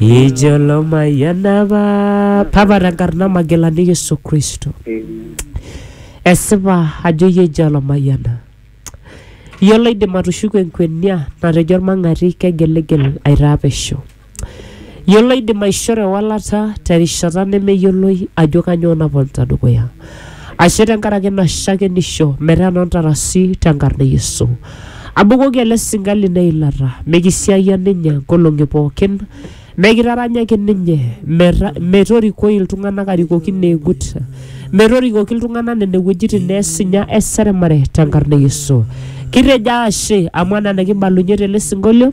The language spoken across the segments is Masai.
Ijo lomayian apa papa tenkarna Magilani Yesu Kristo. Esipa ajo iyie eji olomayiana. Iyie loidim atushuku enkwenia natejo olmang'ati kegiligil aitaa pesho. Iyie loidim aishoo ewalata terishata nemeyioloi ajo kanyoo naponita dukuya. Ashe tenkaraki ina shakenisho metaa enoo ntarasi te nkarna e Yesu. Abukoki ele sinka lino eilata, mikisiayia ninye nkolong'i pookin, mikitaranyaki ninye, meta, metorikoi iltung'ana arikoki neegut, metorikoki iltung'ana nene wuejitin neesinya eseremare te nkarna e Yesu. Kitejo ashe amu ena nikibalunye tele sinkolio.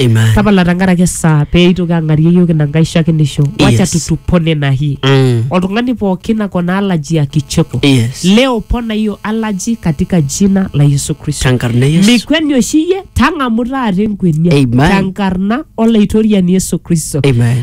Amen. tapala tenkaraki esaa pee itoki ang'arie iyiook ina nkae shakenisho wacha Yes. tutupone na hii Mm. oltung'ani pookin akona alaji ya kicheko Yes. leo pona hiyo alaji katika jina la yesu kristo Tenkarna Yesu. mikweni oshi iyie tang'amu taata enkwenia Amen. tenkarna olaitoriani yesu kristo Amen.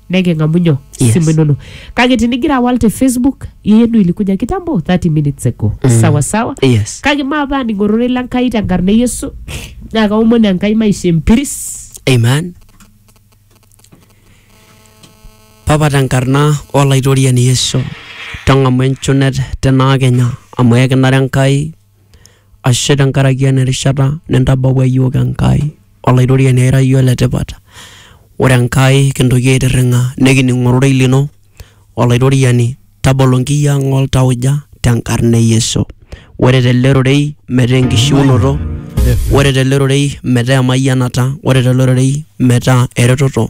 neking'amu nyoo Yes. simu inono kake tinigira awal te facebook yenu ilikuja kitambo 30 minutes ago sawa sawa Yes. kake maapa aning ororei lenkai tenkarna e yesu naa kaomon enkai maisha empiris Amen. Papa tenkarna olaitoriani Yesu, tang'amu enchunet tenaa kenya amu ekinare Enkai Ashe tenkaraki ena rishata nintabawua iyiook Enkai, Olaitoriani ai ira iyie ole tipat. Ore Enkai kintoki aitirring'a nikining ororei lino, Olaitoriani tabolo inkiyia ang oo ltauja tenkarna e Yesu. Ore tele rorei metaa enkishiunoto, ore tele rorei metaa emayianata, ore tele rorei metaa eretoto.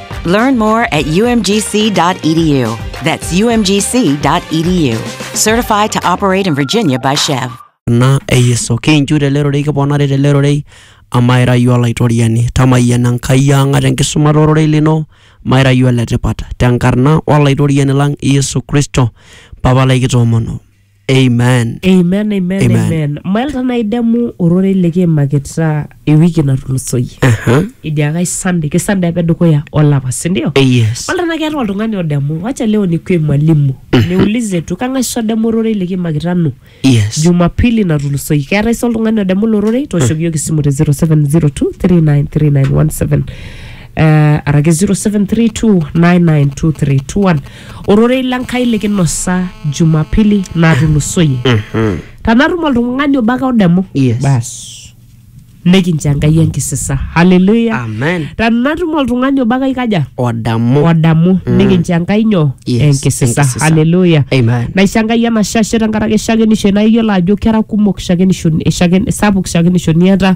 Learn more at umgc.edu. That's umgc.edu. Certified to operate in Virginia by Chev. na eyeso kinchu tele rorei kiponari tele rorei amaira yu olaitoriani tamayiana enkai ang ata enkisumata ororei lino maira yu oletipat tenkarna olaitoriani lang yesu kristo papa lai kitoomono amen amen amen Amen. amen mailta naidemu ororei likiimakita ewiki natulusoyie Aha. idiakai sande ke sande apa edukuya olapa sindio Eh, yes Wala na keeta oltung'ani odemu wacha leo nikue mwalimu niulize tu kang'as odemu ororei likiimakita nu yes jumapili natulusoyie keetae sa oltung'ani odemu ilo rorei tooshoki yiok esimu te 0702393917 uh, araki 0732992321 ororei le Nkai likinosa Jumapili natulusoyie. Mhm. Tanatum oltung'ani obo ake odemu, Yes. bas nikincho Enkai enkisisa. Haleluya! Amen. Tanatum oltung'ani obo ake aikaja Odamu. odamu nikincho Enkai nyoo Yes, enkisisa. enkisisa. Haleluya! Amen. naisho Enkai enashashe tenkaraki shakenisho naa iyiolo ajo kera kumok shakenisho shaken, sapuk shakenisho niata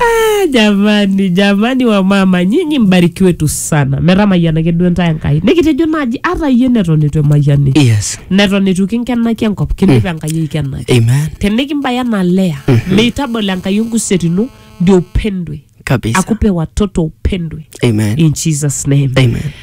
Ah, jamani jamani wamama nyinyi mbarikiwe tu sana metamayianaki duo ntae enkai nikitejo naaji ata iyie neton eitu emayiani Yes. neton eitu kinkenaki enkop kindip enkai aikenaki Amen. tenikimbaya na lea meitabol enkai enkuset ino ndio upendwe Kabisa. akupe watoto upendwe Amen. in jesus name Amen.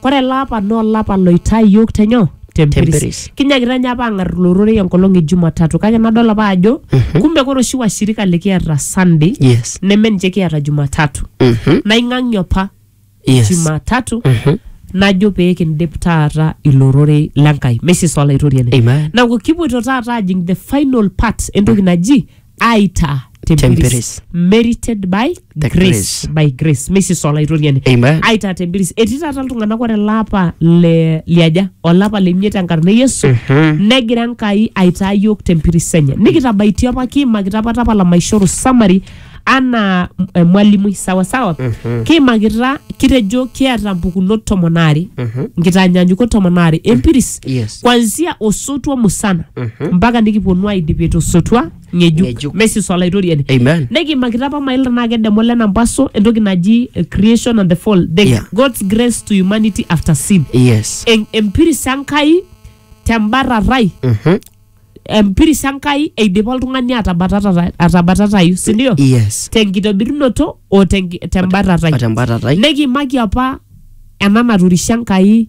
Kore ele apa naa olapa loitaa iyiook te nyoo? Tempiris. Tempiris. Kinyakita ninye apa aang'ar ilo rorei enkolong e Jumatatu kake nadol apa ajo kumbe kore oshi washirika likiata Sunday Yes. neme ninche kiata Jumatatu. Mhm. Naing'ang'ie apa Yes. Jumatatu Mhm. najo pee kindip taata ilo rorei le Nkai. Mesis olaitoriani. Amen. Neaku kipuoito taata ajing the final part entoki naji aita tempiris Tempiris. merited by The grace. grace. by grace mesis olaitoriani Amen. aita tempiris etii taata iltung'anak ore lapa le liaja olapa lemiet enkarna e yesu Mhm. negira enkai aitaa yiok tempiris enye nikitabaitie apa kiimakita apa tapala maishoru summary anaa m- eh, mwalimui sawasawa kiimakita kitejo kiata mpukunot tomon aare nkitaanyanyukot tomon aare empiris yes kwanzia osotua musana mpaka nikiponu aidipie tosotua ng'ejuk Ng'ejuk. mesis olaitoriani Amen. nikimakita apa mailta naa kedemo lena mpaso entoki naji eh, creation and the fall the Yeah. god's grace to humanity after sin yes En- empiris enkai tembarrarai Mhm. empiris enkai eidipa oltung'ani atabatata- atabatatayu sindio yes tenkitobirunoto o tenki- tembarrarai atembatatai nekimaki apa ena naturishe enkai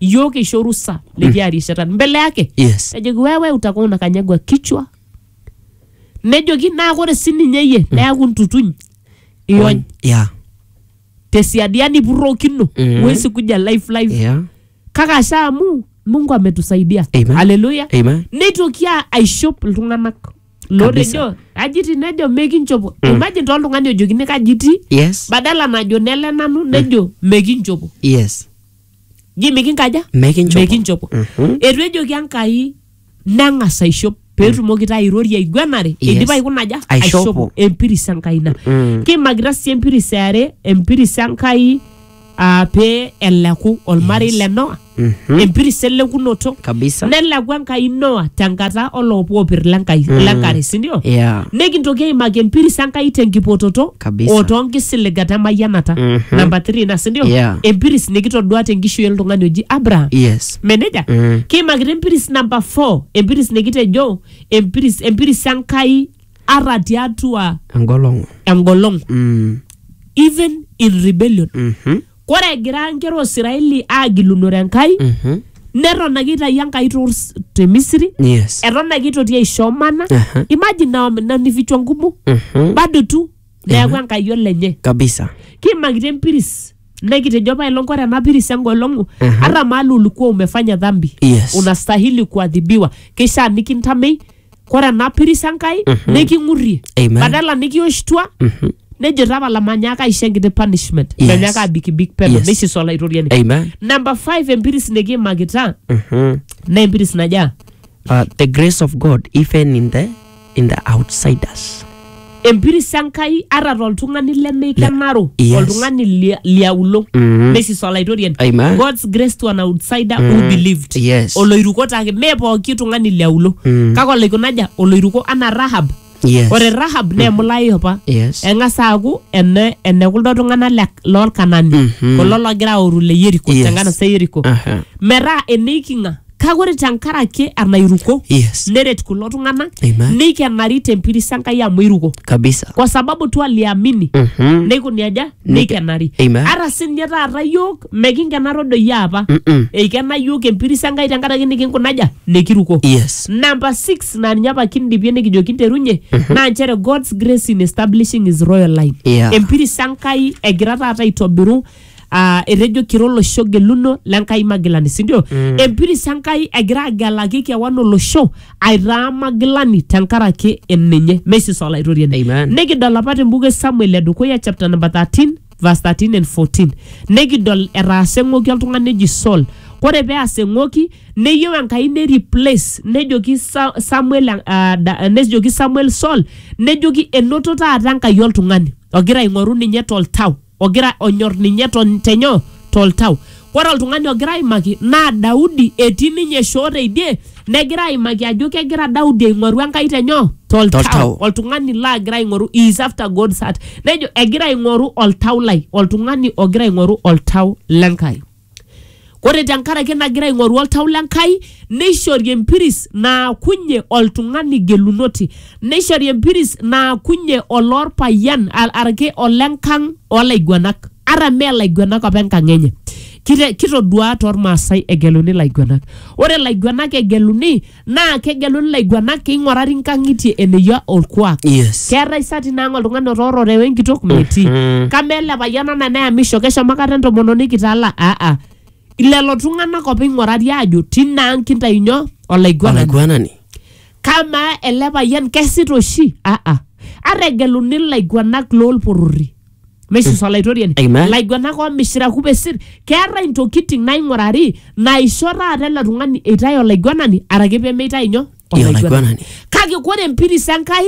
iyiook isho orusa likiaa rishata mbele yake yes ejoki wewe utakuwa unakanyagwa kichwa nejoki naa kore sininye iyie neaku ntutuny iony yeah tesiadi yani ipurrokino Mm. huwezi kuja life life yeah kake asha amu mungu ametusaidia Amen. haleluya amen neitoki a- aishop iltung'anak lootejo ajiti nejo mekinchopo imagine toltung'ani ojokini kajiti yes badala najo nele nanu nejo mekinchopo yes ji mikinkaja Mikinchopo. mikinchopo Mhm. etu ejoki enkai neng'as aishop peetumoki taa airorie aiguanare Yes. eidipa aikuna aja Aishopo. empiris enkai ina Mm. kiimakita sii empiris eare empiris enkai aa pee eleku olmarei le noa Mhm. empiris elekunoto kabisa neleku enkai noa tenkata oloopopir lenkai lenkare sindio yeah. nikintoki aimaki empiris enkai tenkipototo Kabisa. o toonkisiligat emayianata Mhm. namba 3 ina sindio Yeah. empiris nikitodua tenkishui oltung'ani oji abraham Yes. meneja Mm. kiimakita empiris namba 4 empiris nikitejo empiris empiris enkai ara tiatua Engolong'u. engolong Mm. even in rebellion Mhm. Kore egira nkera o Siraeli aagilunore Enkai, Mhm. neton ake eitayio Enkai too rs- te Misiri, Yes. eton ake eitoki aisho mana. Aha. Imagine na wamenanifichwa ngumu Mhm. bado tu neaku Enkai olenye. Kabisa. Kiimakitia empiris nekitejo apailong kore ena piris engolong'u Aha. hata mahali ulikuwa umefanya dhambi Yes. unastahili kuadhibiwa, keishaa nikintamei kore ena piris Enkai niking'urrie Amen. badala nikioshtua Mhm. nejo tapala manyaaka aisho enkiti punishment Yes. menyaaka abikibik peno Yes. neishiso olaitoriani Amen. namba 5 empiris nikiimakita Mhm. naa empiris najaa Uh, the grace of God, even in the in the outsiders. empiris enkai ata toltung'ani lemeikenaro Yes. oltung'ani lia- liauluo Mhm. mesis olaitoriani Amen. god's grace to an outsider who believed Yes. oloiruko take mee pooki tung'ani liauluo Mm. kake olaikunaja oloiruko anaa rahab Yes. ore rahab naa emulai apa Yes. eng'as aaku ene ene kuldo tung'anak le- lolkanani Mhm. kulo logira aoru le yeriko Yes. tenkanasa yeriko Aha. metaa eneiking'a kake ore tenkaraki enairuko Yes. neret kulo tung'anak Amen. neikenari tempiris enkai amu iruko Kabisa. kwa sababu tu aliamini Mhm. neikuni aja neikenari Amen. ata sinye taata yiok mekinkenaro doi apa Mm-mm. eikena yiok empiris enkai tenkaraki nikinkunaja nikiruko Yes. namba 6 naa ninye apa kindipie nikijo kinterunye naa nchere god's grace in establishing his royal line Yeah. empiris enkai egira taata aitobiru ah, etejo kira olosho geluno le Nkai magilani sindio mm. empiris Enkai egira agelaki kewan olosho aitaa magilani tenkaraki eninye mesis olaitoriani Amen. nikidol apa tembuku e Samuel edukuya chapter number 13 verse 13 and 14 nikidol etaasa eng'oki oltung'ani eji Saul kore peas eng'oki neyieu Enkai ne replace nejoki Sa- Samuel uh, da, nejoki Samuel Saul nejoki enoto taata Enkai oltung'ani ogira aing'oru ninye toltau ogira onyor ninye ton- tenyo toltau ore oltung'ani ogira aimaki naa daudi etii ninye shoo teidie negira aimaki ajo kegira daudi aing'oru enkai tenyo Toltau. toltau oltung'ani laagira aing'oru he is after god's heart nejo egira aing'oru oltau lai oltung'ani ogira aing'oru oltau lenkai Ore tenkaraki nagira aing'oru oltau le Nkai, neishori empiris naakunye oltung'ani gelunoti, neishori empiris naakunye oloorpayian araki olenkang' oolaiguanak ata mee laiguanak apa enkang' enye. Kitoduaa tolmaasai egeluni laiguanak. Ore laiguanak egeluni. naa kegeluni laiguanak keing'orari nkang'itie eneyia olkuak Yes. keetae sa tinaang oltung'ani otoorore wenkitok metii Mhm. kama ele payian ana neyamisho keshomo kata entomononi kitala aa lelo tung'anak opa ing'urari aajo tinaang kintayu nyoo olaiguanani Olaiguanani. kamaa ele payian kesita oshi aa ata egeluni ilaiguanak loolporori Mesis olaitoriani. Amen. Ilaiguanak oomishira kupesir, keeta intokitin naing'urari naisho taata ele tung'ani eitae olaiguanani araki pee meitae nyoo? Ee, olaiguanani. Kake kore empiris Enkai,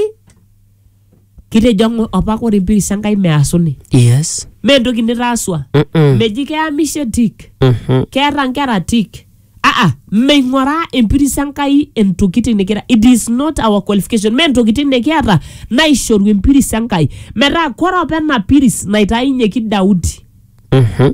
kitejo ng'o- opa kore empiris Enkai measuni. Yes. Mee entoki nitaasua. Mm-mm. Meji keamishe tik, Mhm. keeta nkera tik, aa meing'oraa empiris Enkai entokitin nikira it is not our qualification mee ntokitin nikiata naishoru empiris Enkai metaa kore apa ena piris naitainyeki Daudi Mhm.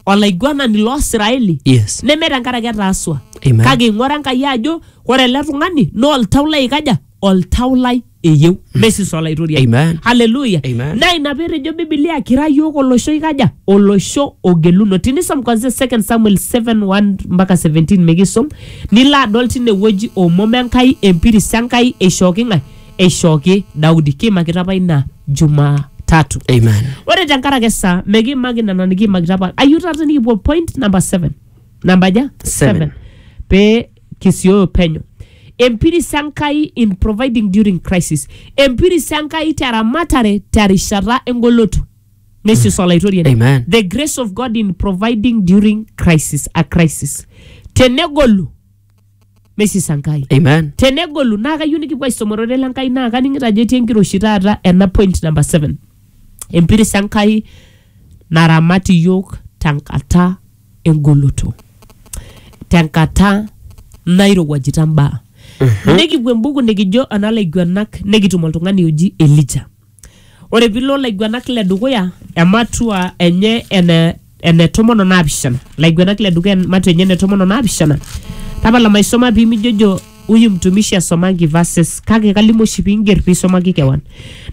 olaiguanani loo Israeli Yes. neme tenkaraki etaasua Amen. kake ing'ora Enkai ajo ore ele tung'ani naa oltau lai aikaja oltau lai eyieu naisis olaitoriani Amen. haleluya Amen. naa ina peetejo bibilia kira yiok olosho ikaja olosho ogeluno tinisom kwanzia 2 samuel 7:1 mpaka 17 mikisom nilo adol tinewueji omom enkai empiris enkai eishooki ng'ae eishooki daudi kiimakita apa ina jumaa tatu Amen. ore tenkaraki esaa mekiimaki nena nikiimakita apa ayieu taata nikipuo point number 7 namba aja Seven. pee kisioyo penyo. Empiris Enkai in providing during crisis. Empiris Enkai teramatare terishata engoloto. Nesius olaitoriani. Amen. The grace of God in providing during crisis, a crisis. Tenegolu, nesius Enkai. Amen. tenegolu naa kayieu nikipuo aisum ororei le Nkai naa kaning'ito ajo etii enkiroshi taata ena point number seven empiris Enkai naramat iyiok tenkata engoloto tenkata nairowuajita mbaa nikipuo embuku nikijo ana laiguanak nikitum oltung'ani oji elija ore pilo laiguanak le dukuya ematua enye ene ene tomon o naapishana laiguanak le dukuya ematua enye ene tomon o naapishana tapala maisoma pimijojo huyu mtumishi asomangi verses kake kalimu oshi piinger piisomaki kewan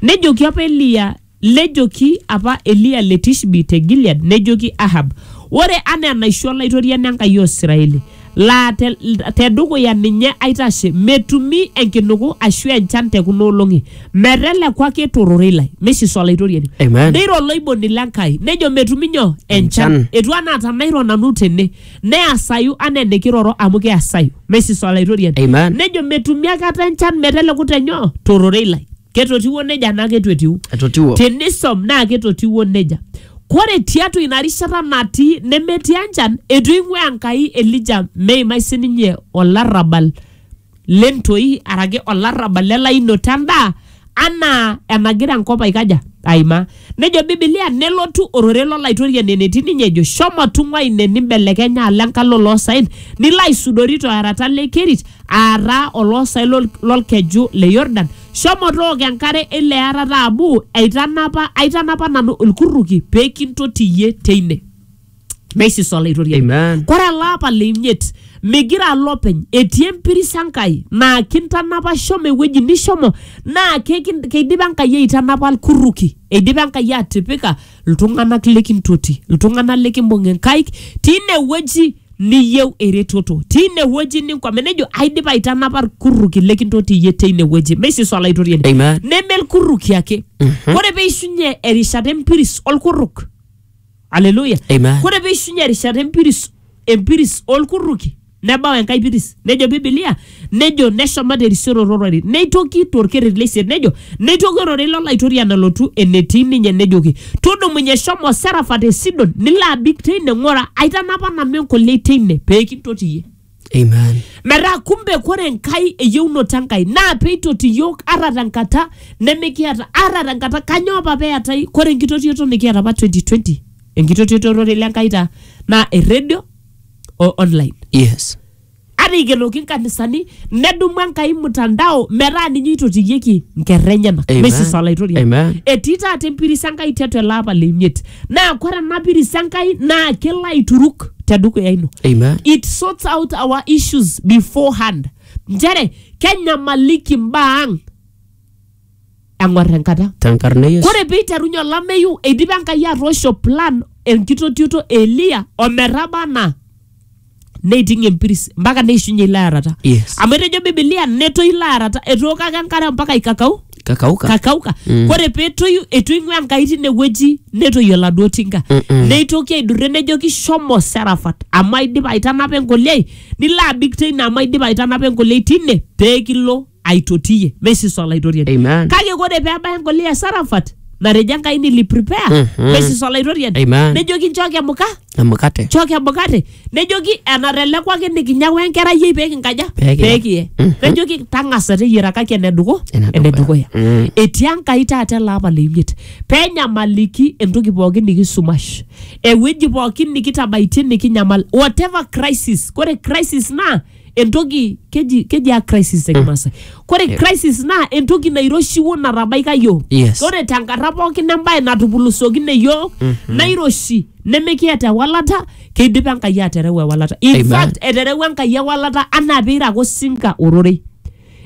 nejoki apa eliya Nejoki apa Eliya le Tishbi te Gilead nejoki Ahab, Ore anaa enaisho Olaitoriani Enkai o Israeli, laa te, te dukuya ninye aitashe, metumi enkinuku ashu enchan te kuna olong'i, meteleku ake to rorei lai. Neishiso Olaitoriani. Amen. Neiro oloiboni le Nkai, nejo metumi nyoo? Enchan. Enchan. Etiu anaa tanairo nanu tene, neasayu anaa enikiroro amu keasayu. Neishiso Olaitoriani. Amen. Nejo metumi aikata enchan meteleku te nyoo? To rorei lai. ketotiwuo neja naa keitu etiu etotiwuo tenisom naa ketotiwuo neja kore tiatua ina rishata natii nemetii enchan eitu eing'ua enkai elija meimai sininye olarrabal lentoi araki olarrabal lelainoto endaa anaa enagira enkop aikaja aimaa Nejo Bibilia nelotu ororei lo Laitoriani enetii ninye ejo shomo tung'ua ine nimbelekenya alo enkalo oloosaen nilo aisudori to arata le Kerit aataa oloosaen lol- lolkeju le Yordan. Shomo tooko enkare eilo arata amu aitanapa aitanapa nanu ilkurruki pee kintoti iyie teine. meisis olaitoriani Amen. kore ele apa le imiet migira alo openy etii empiris enkai naa kintanapa shomo ewueji nishomo naa kekin- keidipa enkai aitanapa ilkuruki eidipa enkai atipika iltung'anak likintoti iltung'anak likimbung inkaik tine wueji niyieu eretoto tine wueji ninkwame nejo aidipa aitanapa ilkuruki likintoti iyie teine wueji meisis olaitoriani Amen. neme ilkuruki ake ore peishunye erishata empiris olkuruk aleluya Amen. kore peishunye erishata empiris empiris olkurruki nebau enkae piris nejo bibilia nejo neshomo terisioroto ororei neitoki torkerreti leisiet nejo neitoki ororei lolaitoriani alotu enetii ninye nejoki tudumunye shomo serafa te sidon nilo abik teine ng'ora aitanapa nanu enkoliai teine peekintotiyie Amen. metaa kumbe kore enkai eyieunoto enkai naa peitoti iyiok ara tenkata nemikiata ara tenkata kanyoo apa peetai kore enkitotioto nikiata apa 2020 enkitotioto ororei lenkai taa naa erredio o online Yes. ata ikenoki nkanisani nedumu enkai mtandao metaa ninye eitotiyieki nkerra enyenak Amen. meisisa olaitoriani Amen. etii taata empiris enkai tiatua ele apa le imiet naa kore ena piris enkai naa kelo aituruk tedukuya ino Amen. it sorts out our issues beforehand nchere kenyamaliki mbaa ang eng'or enkata Tenkarna Yesu. kore piiterunye olameyu eidipa enkai atoosho plan enkitotioto e eliya ometaba anaa neiting empiris mpaka neishunye ilo arata Yes. amu etejo bibilia netoi ilo arata etooko ake enkare mpaka ikakau kakauka kakauka mm. ore petoyu etu ing'ua enkai tinewueji netoyio oladuo tinka Mm-mm. neitoki aidurre nejoki shomo serafat amu aidipa aitanapa enkoliai nilo abik teine amu aidipa aitanapa enkoliai tine pee kilo aitotiyie mesis olaitoriani Amen. kake ore pee ebaya engoli e sarafat natejo enkai nili prepare Mhm. mesis olaitoriani Amen. nejoki nchooki emuka emukate nchooki emukate nejoki enatelekwaki nikinyawa enkerai yei pee kinkaja Pee kiye. pee kiye Mhm. nejoki tang'asa teyiarakaki eneduku Enedukuya. enedukuya Mm. etii enkai taata ele apa leimiet pee enyamaliki entoki pookin nikisumash ewueji pookin nikitabaitie nikinyamal whatever crisis ore crisis naa entoki keji keji a crisis te kimaasai kore crisis naa entoki nairoshiwuo natabaika yiok Yes. ore tenkarna pookin embae natupulusookine yiok nairoshi nemikiata ewalata keidipa enkai atereu ewalata in Amen. fact eterewua enkai ewalata anaa peirako sinka ororei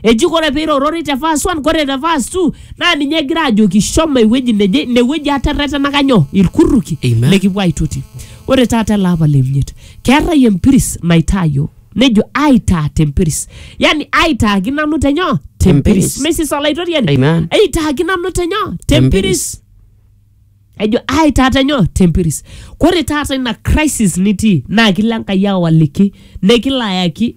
Eji kore peirorori te verse 1 kore te verse 2 naa ninye egira ajoki shomo ewueji neje ine wueji aterretenaka nyoo irkuruki Amen. likipuo aitoti. Ore taata ele apa le imiet keetae empiris naitaa yiok nejo aitaa te mpiris yani aitaaki nanu te nyoo te mpiris Tempiris. mesis olaitoriani Amen. aitaaki nanu te nyoo te mpiris ejo ai taata nyoo tempiris kore taata ina crisis nitii naa kilo enkai awaliki nekilo ayaki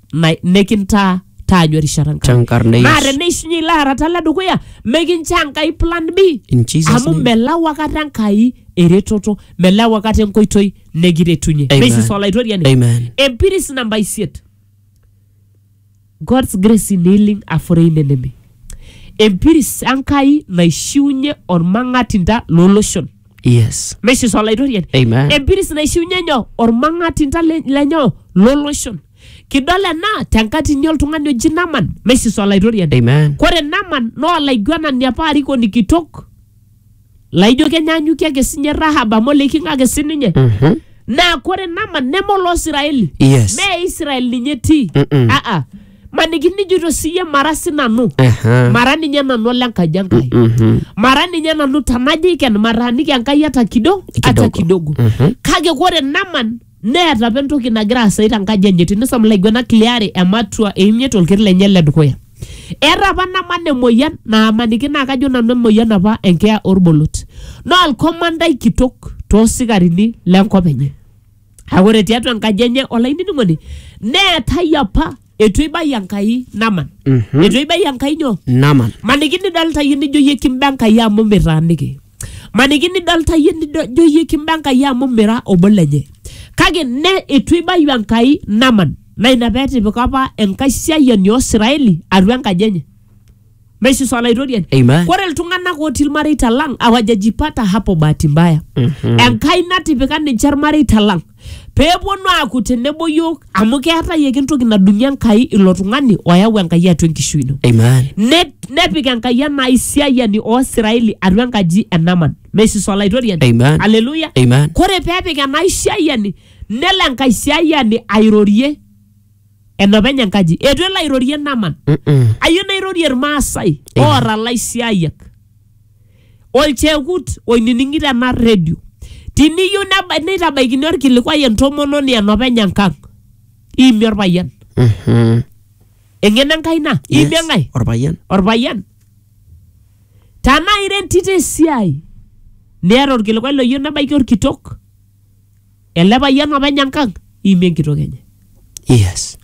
na- nikintaa taanyu erishata Nkai. Chankarna Yesu. naa teneishunye ilo arata le dukuya mikinchoo Enkai plan B In Jesus' amu name. melau akata Enkai eretoto melau akata enkoitoi nekiretunye Amen. meisisa olaitoriani Amen. empiris namba isiet God's grace in healing a foreign enemy empiris Enkai naishiunye ormang'atinda looloshon Yes. meshiso olaitoriani Amen. empiris naishiunye nyoo ormang'atinta le- lenyoo loloshon kidol ena tenkatini oltung'ani oji naman meshiso olaitoriani Amen. kore naman naa olaiguanani apa arikoni kitok laijo kenyaanyukie ake sinye rahab amu oleikinga ake sininye Mhm. naa kore naman neme oloo siraeli Yes. mee israel ninye etii Mm-mm. aa maniki nijoito siyie mara sinanu Aha. mara ninye nanu ole nkaji enkai Mhm. mara ninye nanu tanajo iken mataaniki enkai hata kidogo hata Kidogo. kidogo Mhm. kake kore naman neeta apa entoki nagira aasai tenkaji enye tinisom ilaiguanak liare ematua eimiet olkeri lenye le dukuya eeta apa naman emoyian naamaniki naa kajo nanu emoyian apa enkeeya orbolot naa olkomandai kitok toosikarini lenkop enye Kake ore tiatua enkaji enye olainining'oni neetae apa eitu eibaia Enkai Naman. Mhm. Eitu eibaia Enkai nyoo? Naman. Maniki nidolta iyie nijo iyie kimba Enkai amu mitaaniki. Maniki nidolta iyie nido- nijo iyie kimba Enkai amu mira obo lenye. Kake ne eitu eibayu Enkai Naman. Naa ina petipika apa enkaisiayiani oo Siraeli atua enkaji enye. Maishisu Olaitoriani. Amen. Ore iltung'anak otii ilmareita lang awajajipata hapo bahati mbaya. Enkai natipika ninche ilmareita lang pee eponu aaku tenebo yiok amu keetae ake entoki nadung'ie Enkai ilo tung'ani oyau Enkai atua enkishui ino. Amen. Ne- nepik Enkai ena aisiayiani oo Israeli atua enkaji e Naman. Meishisu Olaitoriani. Amen. Haleluya. Amen. Kore pee epik ena aisiayiani nelo enkaisiayiani airorie enopeny enkaji eitu elo airorie naman Mm-mm. ayieu nairorie irmaasai Eh. oora laisiayiak olchekut oinining'ito ena redio tiniyieu neba- neitabaikini orkilikuai entomononi enopeny enkang iimie orpayian Mhm. eng'eno enkai ina iimie Yes, enkae orpayian orpayian tanaa ira entito esiai niata orkilikuai loyieu nebaiki orkitok ele payian openy enkang iimie enkitok enye Yes.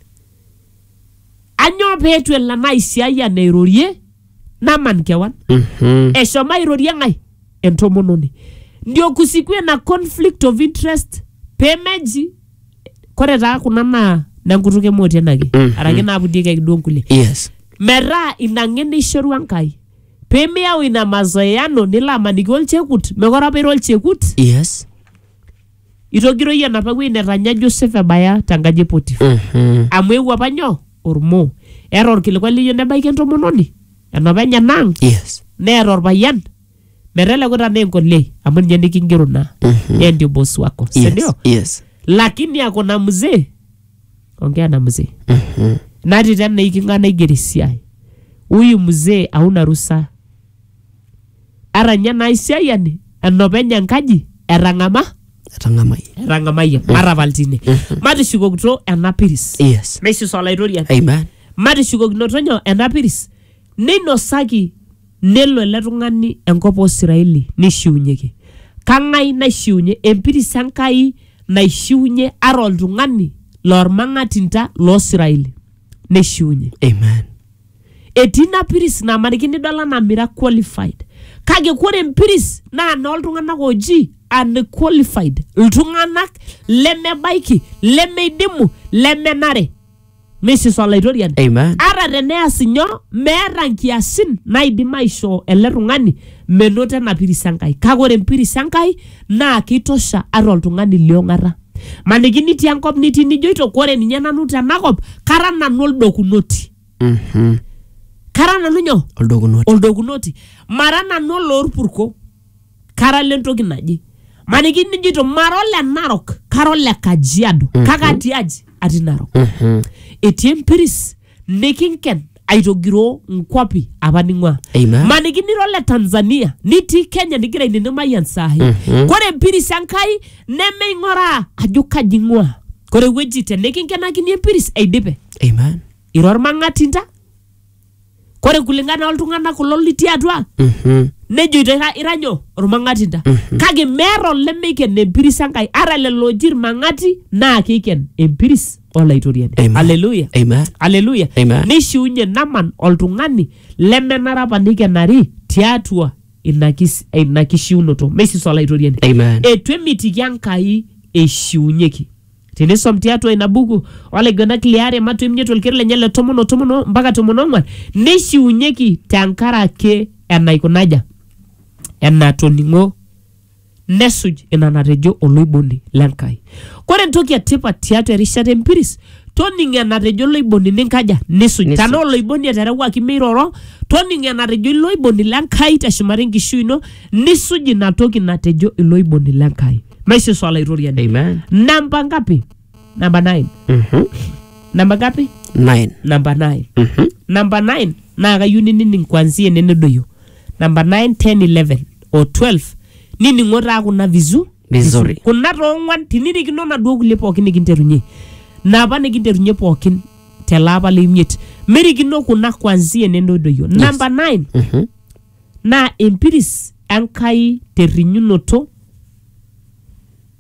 anyoo peetu elo ena aisiayiani airorie naman kewan Mhm. eshomo airorie ng'ae entomononi ndio kusiku ena conflict of interest pemeji kore taa kuna naa nenkutuk emoti enake Mhm. araki naapudiekeki duo nkulie Yes. metaa ina ng'eno eishorua Enkai pemiyau ina mazoeano nilo amaniki olchekut mekore apa ira olchekut Yes. itogiroi enapa wueji netanya Joseph ebaya tenkaji e Potifa Mhm. amu eewuo apa nyoo ormoo eeta orkilikuai liyieu nebaiki entomononi enapa enyena ang Yes. neeta orpayian meteleku tanaa enkolei amu ninye nikingero naa Mhm. yeye ndio boss wako si Yes. ndio Yes. lakini ako na mzee ongea na mzee Mhm. nati tena iking'ana igeri siai huyu mzee hauna ruhusa Eranya ena aisiayiani enopeny enkaji etang'ama etang'amai etang'amayie matapal tine matishukokito ena piris yes neisus olaitoriani amen matishukokinoto nyoo ena piris neinosaki nelo ele tung'ani enkop oosiraeli neishiunyeki kang'ai naishiunye empiris enkai naishiunye ara oltung'ani loormang'atinta loosiraeli neishiunye amen etii ina piris namaniki nidol anaa mira qualified kake kore empiris naa nooltung'anak ooji unqualified iltung'anak lemebaiki lemeidimu lemenare misis olaitoriani Amen. ata teneas inyoo meeta nkiasin naidim aishoo ele tung'ani menoto ena piris enkai kake ore empiris enkai naa keitosha ata oltung'ani liong'ata maniki nitii enkop nitii nijoito kore ninye nanu tenakop kara nanu oldokunoti Mhm. kara nanu nyoo oldokunoto oldokunoti mara nanu oloorpurko kara lentoki naje maniki nijito mara ole narok kara ole kajiado kake atii aji atii narok Mhm. etii empiris nikinken aitogiroo nkwapi apa ning'ua Amen. maniki nira ole tanzania nitii kenya nigira ainenemayian sahi kore empiris enkai nemeing'oraa ajo kaji ing'ua Kore ewueji te nikinkenakini empiris eidipe. Amen. Ira ormang'atinta. Kore kulingana oltung'anak kulo litii atua Mhm. nejoito ira, ira nyoo ormang'atinta. Kake meeta olemeiken empiris Enkai. Ara lelo oji irmang'ati naa keiken empiris olaitoriani. Amen. Haleluya. Amen. Haleluya. Amen. Neishiunye Naman oltung'ani lemenare apa neikenari tiatua ina kis- ina kishiunoto meisisu olaitoriani Amen. etu emitiki enkai eishiunyeki tinisom tiatua ina buku olaiguenak liare matu emiet olkeri lenye le tomon o tomon o- mpaka tomon ong'wan neishiunyeki tenkaraki enaikunaja enatoning'o nesuj ina natejo oloiboni le Nkai. Kore entoki e tipat tiatua erishata empiris, toning enatejo oloiboni ninkaja nisuj. Nisuj. Tanaa oloiboni eterewuaki meiroro, toning enatejo ilo oiboni le Nkai teshumata enkishui ino nisuj ina toki natejo ilo oiboni le Nkai. Maishoo Yesu Olaitoriani. Amen. Namba ngapi? namba 9 Mhm. namba ngapi Nine. namba 9 Mhm. namba 9 naa kayieu ninining kwanzia ene nedoyio namba 9 10 11 o 12 nining'o taa kuna vizu Vizuri. kuna toong'uan tinirikino naduo kulie pookin nikinterunye napa nikinterunye pookin tele apa le imiet merikino kuna kwanzia ene nedoyio namba 9 Mhm. naa empiris enkai terrinyunoto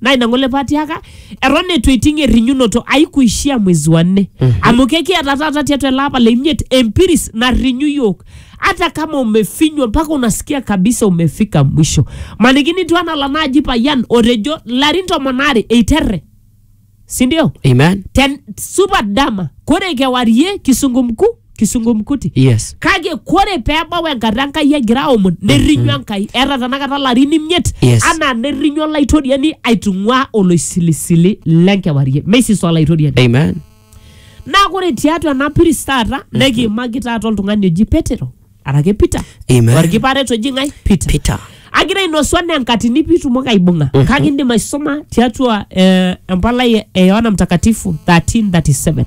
naa ina ng'ole paatiaka eton eitu eiting errinyunoto aikuishia mwezi wa nne amu kekiata taata tiatua ele apa le imiet empiris narrinyu yiok hata kama umefinywa mpaka unasikia kabisa umefika mwisho maniki nitu anala naaji payian otejo larin tomon aare eiterre sindio Amen. ten supat dama kore kewarie kisungu mkuu kisungumkuti yes kake kore peebau enkata enkai egira aomon nerrinyu enkai eeta tanakata larin imiet Yes. anaa nerrinyu olaitoriani aitung'ua oloisilisili lenkewarie meisis olaitoriani amen naa kore tiatua ena piris taata nekiimaki taata oltung'ani oji petero arake peter Amen. orkiparet oji ng'ae peter peter agira ainosu anaa enkatini piitumoki aibung'a kake indim aisoma tiatua eh, empalai e- e yohana mtakatifu 1337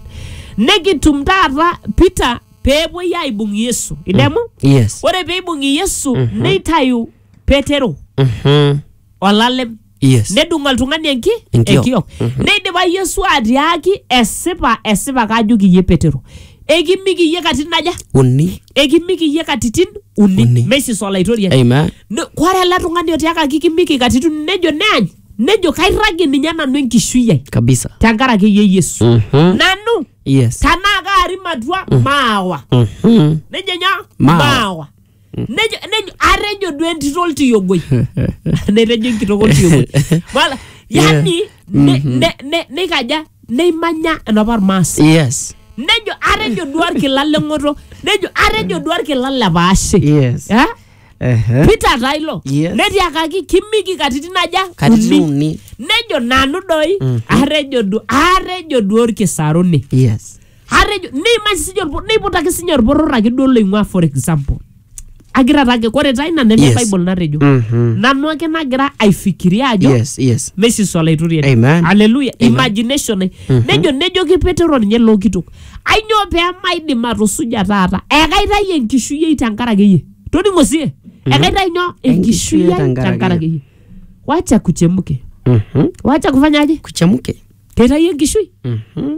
nekitum taata peter peepuoi aibung yesu idemu yes ore peibung'i yesu neitayu petero Mhm. olalem Yes. nedung oltung'ani enki Enkiok. enkiok neidipa yesu atiaaki esipa esipa kaajoki iyie petero ekimiki iyie katitin aja Uni. ekimiki iyie katitin uni, Uni. meisis olaitoriani Amen. Ne- kore ele tung'ani otiakaki kimiki katitin uni, nejo neany nejo kairragie ninye nanu enkishui ai Kabisa. tenkaraki iyie yesu Mhm. nanu Yes. tanaa kaarim atua maawa Mhm. nejo nyoo Maawa. maawa nejo nejo atejo duo entito oltiyogoi netejo enkitok oltiyogoi Wala, yani ne- ne- ne- neikaja neimanya enapa irmaasai yes nejo atejo duo orkila leng'oto nejo atejo duo orkila lepaashe yes Eh? Ehe. peter taa ilo Yes. netiakaki kimiki katitin aja katitin uni uni nejo nanu doi atejo duo atejo duo orkisaruni yes atejo neimaki sinye olpo- neiputaki sinye olporor ake duo loing'ua for example agira taa ake kore taa ina neme Yes. bible natejo Mhm. nanu ake nagira aifikiria ajo yes yes mesis olaitoriani Amen. aleluya Amen. imagination ai nejo nejoki petero ninye loo kitok ainyoo pee maidim atusuja taata ekaitai enkishui ai tenkaraki iyie toning'o sie ekaitai nyoo enkishui ai tenkaraki tenkaraki iyie wacha kuchemuke Mhm. wacha kufanyaje kuchemuke keitai enkishui Mhm.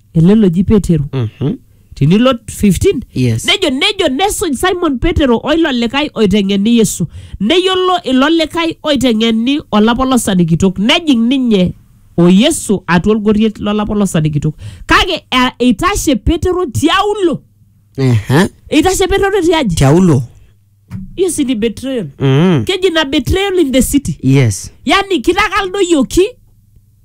ele loji petero Mhm. tinilo 15 Yes. nejo nejo nesuj simon petero oilo likae oiteng'eni yesu neyiolo ilo likae oiteng'eni olapolosani kitok nejing ninye o yesu atua olgoriet lolapolosani kitok kake eh, eitashe petero tiaulo Ehe. eitashe petero tiaji tiaulo hiyo si ni betrayal Mhm. keji na betrayal in the city yes yani kitakaldoyioki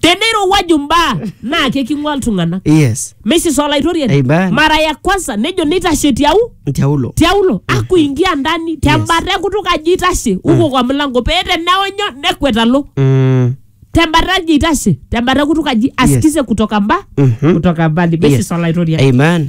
teneirowua jumbaa naa keking'ua iltung'anak yes mesis olaitoriani Amen. mara ya kwanza nejo nitashe tiau ntiaulo tiaulo akuingia ndani tembata enkutuk aji itashe uko kwa mlango pee teneonyo nekwet alo Mm, tembata aji itashe tembata enkutuk aji asikize kutoka mba mhm. kutoka mbali mesis Yes. olaitoriani amen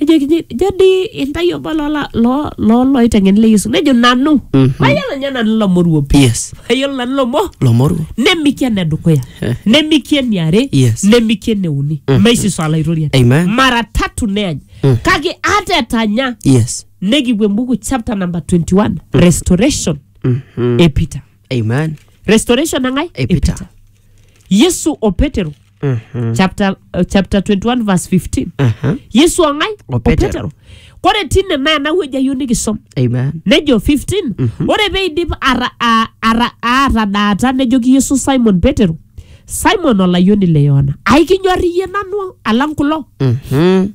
ejokini jo dii intae obo loola- loo- loo loiteng'eni le yesu nejo nanu Mhm. mayiolo ninye nanu ilo moruo pi yes mayiolo nanu ilo mo lomoruo nemiki ene dukuya Eh. nemiki eniare Yes. nemiki eneuni Mhm. maisiso alaitoriani Amen. mara tatu neany Mm. kake ata etanya yes nikipuo embuku chapter number 21 restoration Mhm. e peter amen restoration nangai Epita. yesu o petero Mhm. chapter, uh, chapter 21 verse 15 Aha. yesu angai O Petero. kore tine naa nawueji ayieu nikisom amen nejo 15 ore peidip ara- a- ara- aatadaata nejoki yesu simon petero simon olayioni le yohana aikinyor iyie nanu alang kulo Mhm.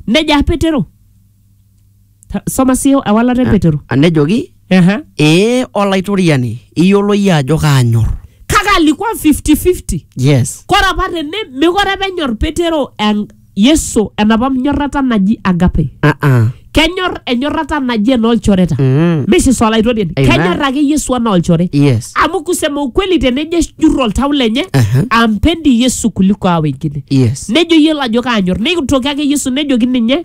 nejo ah petero Ta- soma sii ewalata empetero Ah, nejoki Ehe. ee olaitoriani iyiolo iyie ajo kaanyor kake alikuwa 50-50 yes kore apa tene mekore apa enyor petero en- yesu enapa nyorrata naji agape ah ah kenyor enyorrata naji enoolchoreta mm. misis olaitoriani Amen. kenyor ake yesu anaa olchore yes amu kusema ukweli tenejo jurro oltau lenye Aha. ampendi yesu kuliko a wengine yes nejo yielo ajo kaanyor neitoki ake yesu nejoki ninye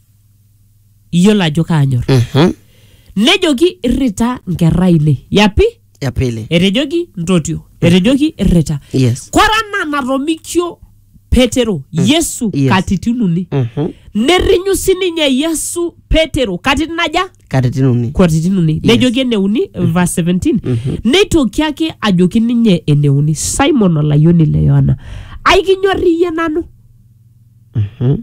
iyiolo ajo kaanyor Mhm. nejoki irrita nkerra ainei yapi ya pili etejoki ntotio etejoki irrita yes kora naa natomikio petero yesu Yes. katitin uni Mhm. nerrinyu sininye yesu petero katitin aja katitin uni katitin uni Yes. nejoki eneuni verse 17 neitoki ake ajoki ninye eneuni simon olayioni le yohana aikinyor iyie nanu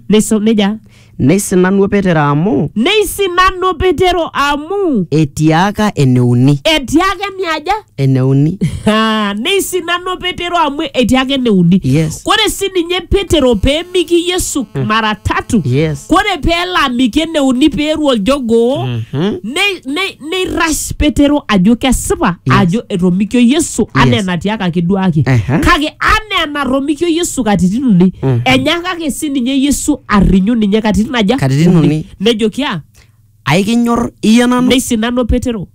Neiso- neja Neisinanu Petero amu neisinanu petero amu etiaka eneuni. etiaka eniaja Eneuni. Ah, neisinanu petero amu etiaka eneuni Yes. kore si ninye petero peemiki yesu mara tatu Yes. kore peelo amiki eneuni peeru oljogoo Mhm. nei- nei- neirrash petero ajo kesipa Yes. ajo etomikio yesu anaa Yes. enatiakaki duake Ehe. kake anaa enatomikio yesu katitin uni Mhm. enyakaki sininye yesu arrinyu ninye katitin aja Katitin uni. nejoki a aikinyor iyie nanu neisinano petero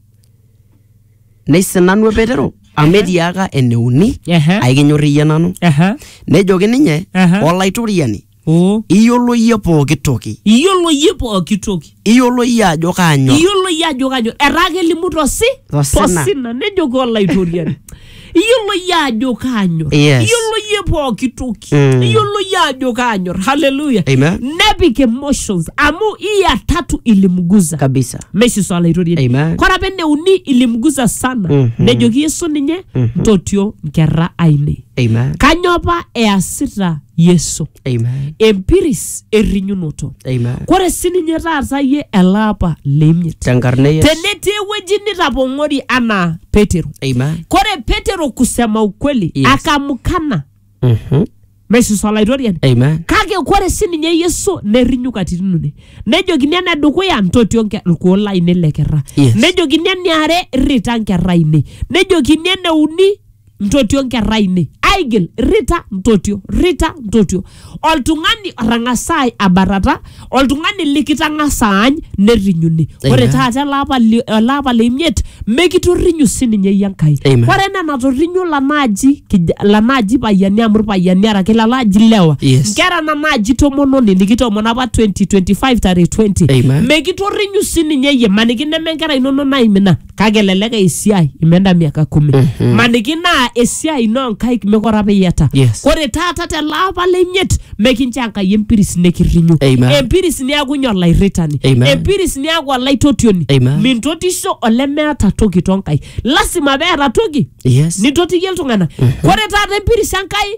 neisinanu petero amu etiaka eneuni Ehe. aikinyor iyie nanu Ehe. nejoki ninye Ehe. olaitoriani oo iyiolo iyie pooki toki iyiolo iyie pooki toki iyiolo iyie ajo kaanyor iyiolo iyie ajo kanyor etaa kelimu tosi Tosina. tosina nejoki olaitoriani iyiolo iyie ajo kanyor Yes. iyiolo iyie pooki toki Mm. iyiolo iyie ajo kanyor haleluya Amen. nepik emotions amu iya tatu ilimguza kabisa meshiso olaitoriani Amen. kore apa eneuni ilimguza sana Mhm. nejoki yesu ninye ntotio nkerra ainei amen kanyoo apa easita yesu Amen. empiris errinyunoto Amen. kore sininye taata ye ele apa leimiet Tenkarna e Yesu. tenetii ewueji nitapong'ori anaa petero Amen. kore petero kusema ukweli Yes. akamukana Mhm. mesus olaitoriani Amen. kake kore sininye yesu nerrinyu katitin uni nejokini ene dukuya ntotio nke- irkuo lainei le kerra Yes. nejokini eniare rrita nkerra ainei nejokini ene uni ntotio nkerra ainei aigil rita ntotio rita ntotio oltung'ani otang'asa ai- abatata oltung'ani likitang'asa aany nerrinyuni ore Amen. taata ele apa li- ele apa le imiet mekitorrinyu sininye iyie enkai Amen. ore enaa enatorrinyo lanaaji kij- lanaaji payiani amu irpayiani araki lanaaji lewa Yes. nkera nanaaji tomononi nikitomono apa 2025 tare 20 Amen. mekitorrinyu sininye iyie maniki neme nkera inono naimina kake elelek esiai imeenda miaka kumi Mhm. maniki naa esiai ino nkaik mekore apa iyiata Yes. kore taata tele apa lenyiet mekincho enkai empiris nikirrinyu Amen. empiris niaku inye olairritani Amen. empiris niaku olaitotioni Amen. mintotisho olemeeta toki tonkai lasima peeta toki yes nitotiyie iltung'anak kore taata empiris enkai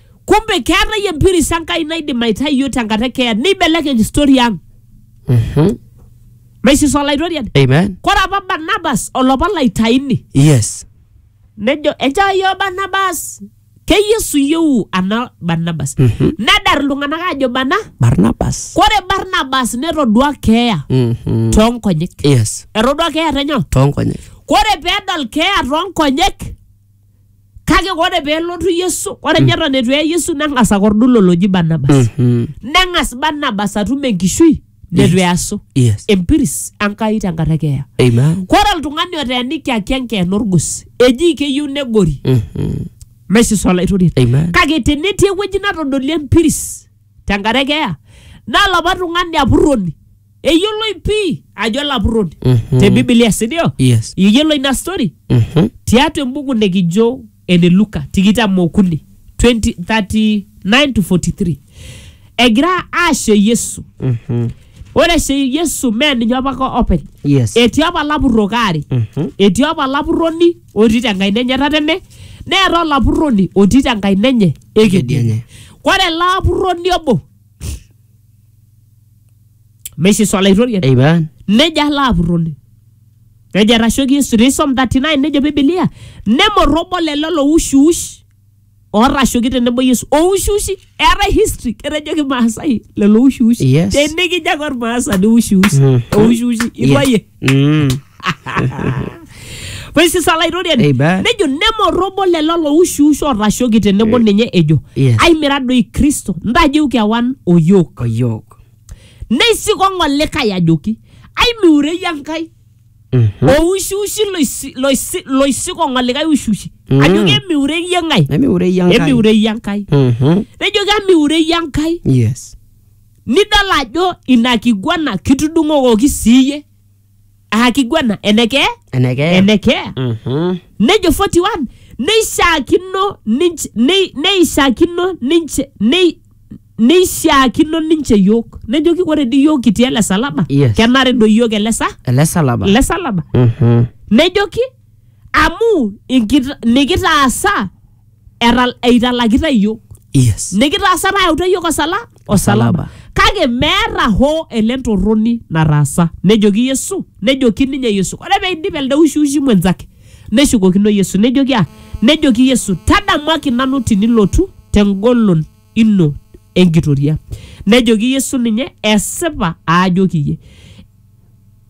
kumbe keetae empiris enkai naidim aitai iyiook tenkata ekeeya neibelekeny story ang Mhm. maisis olaitoriani Amen. kore apa barnabas olopa laitaini Yes. nejo enchoo iyiook barnabas ke yesu iyieu ana barnabas Mhm. nedar iltung'anak aajo bana Barnabas. kore barnabas netodua keeya Mhm. toonkonyek Yes. etodua keeya tenyo Toonkonyek. kore peedol keeya toonkonyek kake ore peelotu yesu ore ninye eton eitu eye yesu neng'as akordu lolo oji barnabas Mhm. neng'as barnabas atum enkishui netu easu Yes. empiris enkai tenkaraki eya Amen. kore oltung'ani oteenikiaki enkeena orgos eji keyieu negori Mhm. meisisa olaitoriani Amen. kake tenetii ewueji natodolie empiris tenkaraki eya naa lapa tung'ani apurroni eyioloi pii ajo olapurroni Mhm. te bibilia sindio Yes. iyiolo ina story Mhm. tiatua embuku nikijo ene luka tikitam okuni 20 39 to 43 egira aashe yesu Mhm. ore eshe yesu mee ninye apa ko openy Yes. etii apa lapurrok aare Mhm. etii apa lapurroni otii tenkaina enye tatene neeta olapurroni otii tenkaina enye Ekedienye. ekedienye ore ele apurroni obo meishiso olaitoriani Amen. nejo alo apurroni nejo etashoki yesu tenisom 39 nejo bibilia nemorrobo lelo loushiush ootashoki tenebo yesu oushiushi eetae history ketejo kimaasai lelo oushiushi Yes. tenikijo ake ormaasani oushiushi Mhm. oushiushi Yes. ibayie Mm. Praise is olairoriani Amen. nejo nemorrobo lelo loushiusho otashoki tenebo ninye ejo yes. aimira doi kristo ntajeu kewan oyok Oyok. neisikong'o likae ajoki aimiurei enkai Mhm. oushiushi loisi- loisi- loisikong'o likae ushiushi Mm. ajoki emiurei eng'ae Emiure iya Enkai. emiurei enkai Mhm. nejoki amiurei enkai Yes. Nidol ajo ina kiguana kitudung'okoki sii iyie. Aa kiguana enekee? Enekee. Enekee. Mhm. Nejo 41 neishaakino ninche nei- neishaakino ninche nei- neishaakino ninche yiok. Nejoki ore dii yiok kitii ele salaba Yes. kenare doi yiok ele sa Ele salaba. ele salaba. Mhm. Nejoki amu inkita- nikitaasa etal- eitalakita iyiook yes nikitaasa nayauta iyiook osala Osalaba. osalaba kake meeta hoo ele ntorroni nataasa nejoki yesu nejoki ninye yesu ore peidip elde ushiushi mwenzake neshukokino yesu nejoki ah nejoki yesu tadamuaki nanu tinilotu tengolon ino enkitoria nejoki yesu ninye esipa aajoki iyie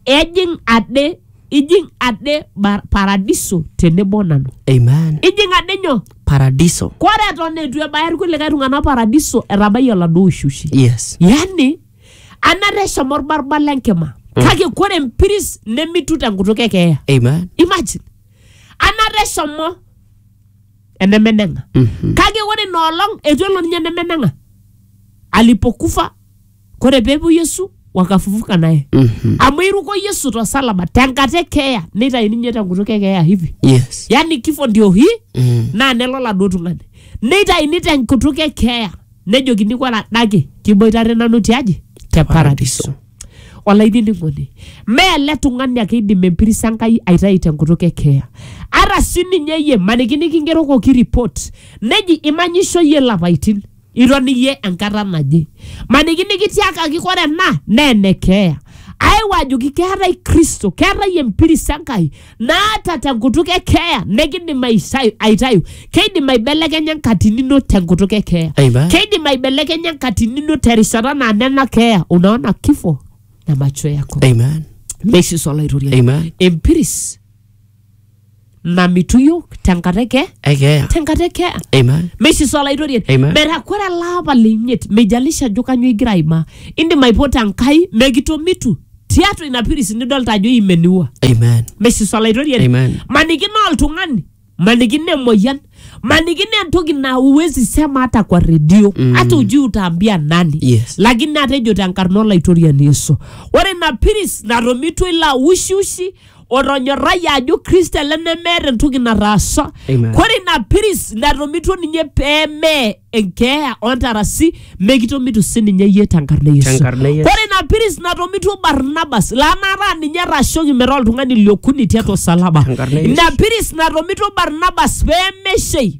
ejing ade ijing ade ba- paradiso tenebo nanu Amen. ijing ade nyoo Paradiso. kore eton eitu ebaya irkulikae tung'anak paradiso etabayie oladuo ushushi Yes. yani anata eshomo orbarbar lenkima kake kore empiris nemitu tenkutuk ekeeya Amen. imagine anata eshomo enemeneng'a Mhm. kake ore ina olong eitu elo ninye enemeneng'a alipokufa kore peepuo Yesu wakafufuka naye Mhm. amu iruko Yesu tosalaba tenkata e keeya neitayu ninye tenkutuk e keeya hivi Yes. yani kifo ndio hii Mm. naa nelo laduo tung'ani neitaini tenkutuk e keeya nejokini kore adake kiboitare nanu tiaji te paradiso olainining'oni mee ele tung'ani ake eidim empiris enkai aitayu tenkutuk e keeya ara si ninye yie maniki nikingerokoki report neji imanyisho yie lapaitin iton iyie enkata naje maniki nikitiakaki kore ena naa ene keeya ayeu ajoki keetae kristo keetae empiris enkai naata tenkutuk e keeya nekidim aisai- aitayu keidim aibelekenya enkatini ino tenkutuk e keeya Amen. keidim aibelekenya enkatini ino terishata naa nena keeya unaona kifo na macho yako Amen. meishiso olaitoriani Amen. empiris namitu yiok tenkata eke Ekeya. tenkata ekea Amen. meishiso olaitoriani Amen. metaa kore ele apa le imiet meijalisha ajo kanyoo igira aimaa indim aipoto enkai mekitomitu tiatua ina piris nidolta ajo imeniua Amen. meishiso olaitoriani Amen. maniki naa oltung'ani maniki naa emoyian maniki naa entoki naa uwezi sema hata kwa redio mm. hata ujui utaambia nani Yes. lakini atejo tenkarna olaitoriani yesu ore ina piris natomitwa ilo ausheushi otonyorrayie ajo kristo ele nemeeta entoki nataasa Amen. kore ina piris natomituo ninye pee mee enkeeya ontarasi mekitomitu sininye yie tenkarna e yesu Tenkarna e Yesu. kore ina piris natomituo barnabas laa nataa ninye etashoki metaa oltung'ani liokuni tiatua osalaba Tenkarna e Yesu. ina piris natomituo barnabas pee meshei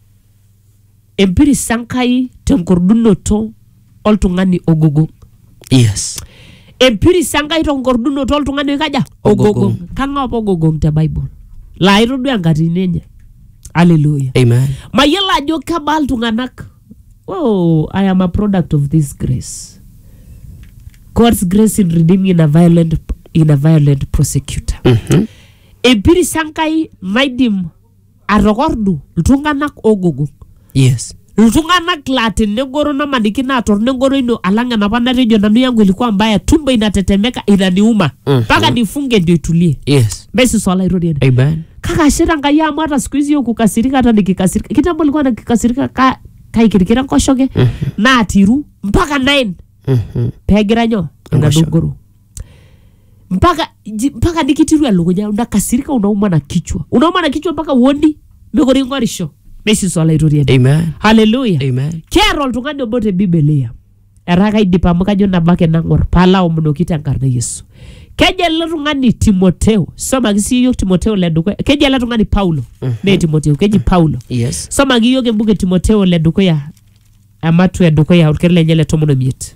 empiris Enkai tenkordunoto oltung'ani ogogo. Yes. Empiris Enkai tenkordunoto oltung'ani oikaja? Ogogong. Kang'ae apa ogogong te Bible? Laa itodua enkatini enye. Hallelujah. Amen. Mayiolo ajo kebaa iltung'anak. Oh, I am a product of this grace. God's grace in redeeming in a violent, in a violent prosecutor. Mhm. Empiris Enkai naidim atokordu iltung'anak ogogo yes iltung'anak laa tenegoro namaniki naa torno engoro ino alang enapa natejo nanu yangu ilikuwa mbaya tumbo inatetemeka inaniuma Mhm. mpaka nifunge ndio itulie yes mesis olaitoriani amen kake ashe tankai amu hata siku hizi yokukasirika hata nikikasirika kitambo likuwa nikikasirika ka, kaikirikira nkoshoke naatiru mpaka nine Mhm. pegira nyo Enkoshoke. enadogoro mpaka ji- mpaka nikitiru elukunya nakasirika unauma na kichwa unauma na kichwa mpaka uoni mekore ing'orisho neisiso olaitoriani Amen. haleluya Amen. keeta oltung'ani obo te bibilia etaa kaidip amu kajo nabo ake nang'or paalaomonoki tenkarna e yesu kejo ele tung'ani timoteo somaki sii yiok timoteo le dukuya keji ele tung'ani paulo mee timoteo keji paulo Yes. somaki yiok embuku e timoteo le dukuya ematu e dukuya olkeri lenye le tomon omiet